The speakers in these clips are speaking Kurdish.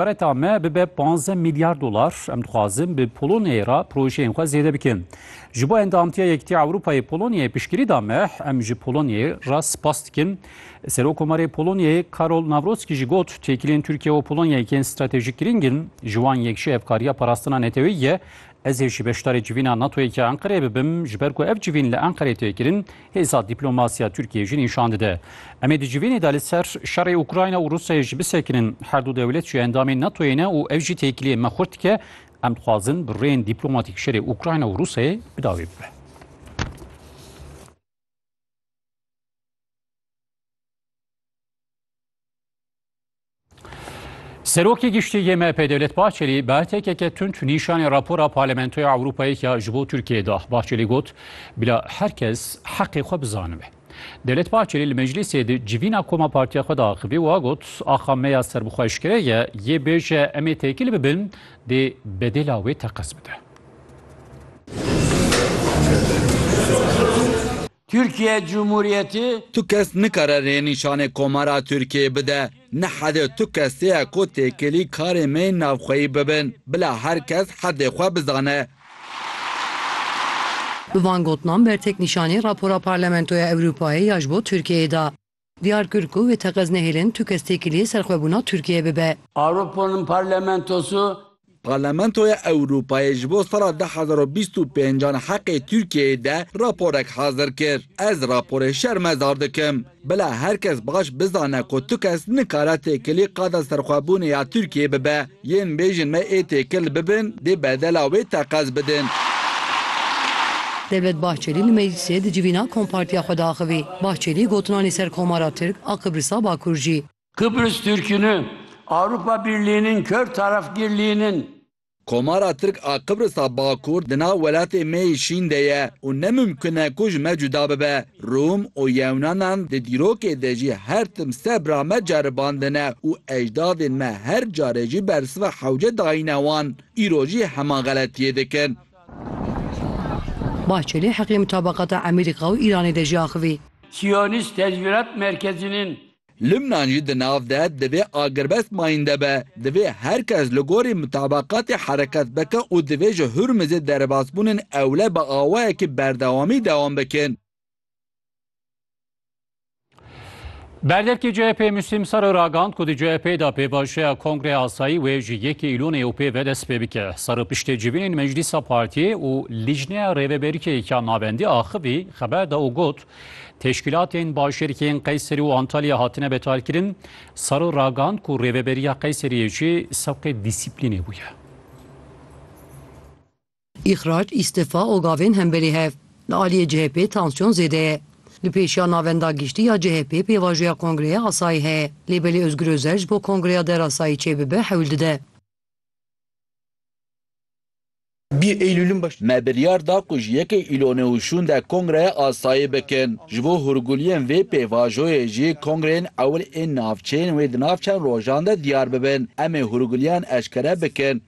Kareta me bibe panzdeh milyar dolar. Em dixwazin bi Polonyayê re projeyên xwe zêde bikin. Ji bo endamtiya Yekîtiya Ewropayê Polonyayê piştgirî da me, em ji Polonyayê re spas dikin. Serokomarê Polonyayê Karol Nawrotski jî got, Têkiliyên Tirkiye û Polonyayê yên stratejîk girîng in. Ji wan yek jî hevkariya parastina neteweyî ye. Ez ê jî beşdarê civîna NATO'yê ke Enqereyê bibim, ji ber ku ev civîn li Enqereyê tê kirin, hêza dîplomasiya Tirkiyeyê jî nîşan dide. Em ê di civînê de li ser şerê Ukrayna û Rûsyayê jî bisekinin. Her du dewlet jî endamên NATO'yê ne û ev jî têkiliyên me xurt dike. Em dixwazin bi rêyên dîplomatîk şerê Ukrayna û Rûsyayê bi dawî bibe. Serokê giştî yê MHP Dewlet Bahçelî bi hertekeke tund nîşanê rapora Parlamentoya Ewropayê ya ji bo Tirkiyeyê da. Bahçelî got, Bila her kes heqê xwe bizanibe. Dewlet Bahçelî li meclîsê di civîna koma partiya xwe de axivî û got, Axa me ya serbixweşkere ye, yê bêje em ê têkil bibin, dê bedêla wê teqez bide. Türkiye Cumhuriyeti. Tu kes nikare rê nîşanê Komara Tirkiyeyê bide. Ni hede tu kesê ye ku têkilî karê me yên navxweyî bibin. Bila her kes hedê xwe bizane. Bi van gotinan bertek nîşanî rapora Parlamentoya Ewropayê ya ji bo Tirkiyeyê da. Diyar kir ku wê teqez nehêlin tu kes têkiliyê serxwebûna Tirkiyeyê bibe. Aropanın parlamentosu. Parlamentoya Ewropayê ji bo sala du hezar û bîst û pênc an heqê Tirkiyeyê de raporek hazir kir. Ez raporê şermezar dikim. Bila her kes baş bizane ku tu kes nikare têkilî qada serxwebûnê ya Tirkiyeyê bibe. Yên bêjin me ê têkil bibin dê bedela wê teqez bidin. Devlet Bahçelî li meclîsê di civîna kompartiya xwe de axivî. Bahçelî gotina li ser Komara Tirk a Qibrisa Bakur jî. Kıbrıs Türk'ünü Avrupa Birliği'nin kör tarafgirliğinin. Komara Tirk a Qibrisa Bakur di nav welatê me yê şîn de ye û ne mumkun e ku ji me cuda bibe. Rûm û Yewnanan di dîrokê de jî her tim sebra me ceribandine û ejdadên me her carê jî bersiva hewce dayîne wan, îro jî heman xeletiyê dikin. Bahçelî heqê mutabaqata Emerîka û Îranê de jî axivî. Siyonîst Tecvîrat Merkezînên Lubnan jî di nav de divê agirbest mayînde be. Divê her kes li gorî mutabaqatê hereket bike û divê ji Hurmizê derbasbûnên ewle bi awayekî berdewamî dewam bikin. Berdevkê CHP'ê Muslîm Saro ragihand ku di CHP'ê de pêvajoya Kongreya Asayî wê ji yekê Îlonê û pê ve dest pê bike. Saro piştê civînên Meclîsa Partiyê û Lîjneya Rêveberîkê ya Navendî axivî xeber da û got, Teşkîlatên başêrkên Qeyserî û Antalya hatine betalkirin, Saro ragihand ku rêveberiya Qeyseriyê jî sewqê dîsîplînê bûye. Îxrac, îstifa û gavên hemberî hev. Li aliyê CHP'ê tansyon zêde ye. Li pêşiya Navenda Giştî ya CHP'ê pêvajoya kongreya asayî heye. Lê belê Ozgur Ozer ji bo kongreya derasayî çêbibe hewl dide. Bî Eylûlin baş. Me biryar da ku ji yekê Îlonê û şûnde kongreyê asayî bikin. Ji bo hûrguliyên vê pêvajoyê jî kongreyên ewil ên navçeyên wê di nav çend rojan de diyar bibin. Em ê hûrguliyan eşkere bikin.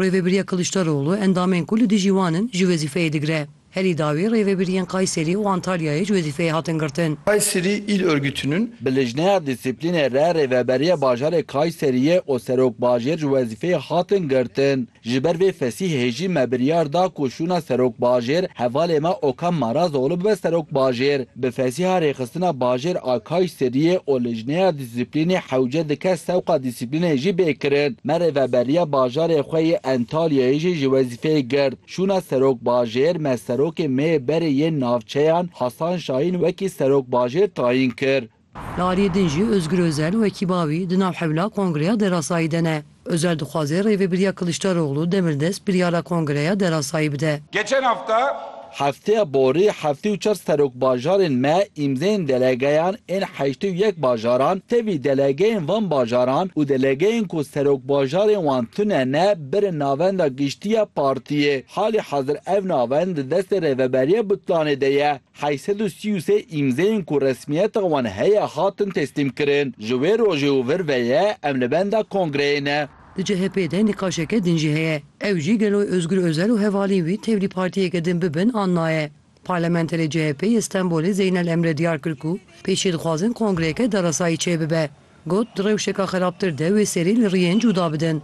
Rêvebiriya Kiliçdaroglu endamên ku li dijî wan in ji wezîfeyê digire. Herî dawî rêvebiriyên Kayserî û Antalyayê ji wezîfeyê hatin girtin. Kayseri il örgütünün. Bi lijneya dîsîplînê re rêveberiya bajarê Kayseriyê û serokbajêr ji wezîfeyê hatin girtin. Ji ber vê Fesîh Hêjî me biryar da ku şûna serokbajêr hevalê me Okan Marazoğlu bibe serokbajêr. Bi Fesîha rêxistina bajêr a Kayseriyê û lijneya dîsîplînê hewce di kes sewqa dîsîplînê jî bê kirin. Me rêveberiya bajarê xwe yê Entalyayê jî ji wezîfeyê girt. Şûna Serok Bajêr me Serokê me yê berê yên navçeyan Hasan Şahîn wekî Serok Bajêr tayîn kir. Li aliyê din jî Ozgur Ozel wekî bavî di nav hewla kongreya derasayî de ne. Ozel dixwaze Rêvebiriya Kiliçdaroglu demirdest biryara kongreya derasayî bide. Geçen hafta. Hefteya borî heftê û çar serokbajarên me îmzeyên delegeyan ên heştê û yek bajaran tevî delegeyên van bajaran û delegeyên ku serokbajarên wan tune ne, Bere navenda giştî ya partiyê, halê hezir ev navend di destê Rêveberiya Butlanê de ye. Heyî sed û sî û sê îmzeyên ku resmiyeta wan heye hatin teslîmkirin. Ji wê rojê û vir ve ye em li benda kongreyê ne. Di CHP'ê de nîqaşeke din jî heye. Ew jî gelo Ozgur Ozel û hevalîn wî tevlî partiyeke din bibin an naye. Parlamenterê CHP'ê yê Stenbolê Zeynel Emre diyar kir ku pêşî dixwazin kongreyeke deresayî çêbibe. Got, di rewşeke xerabtir de wê serî li riyên cuda bidin.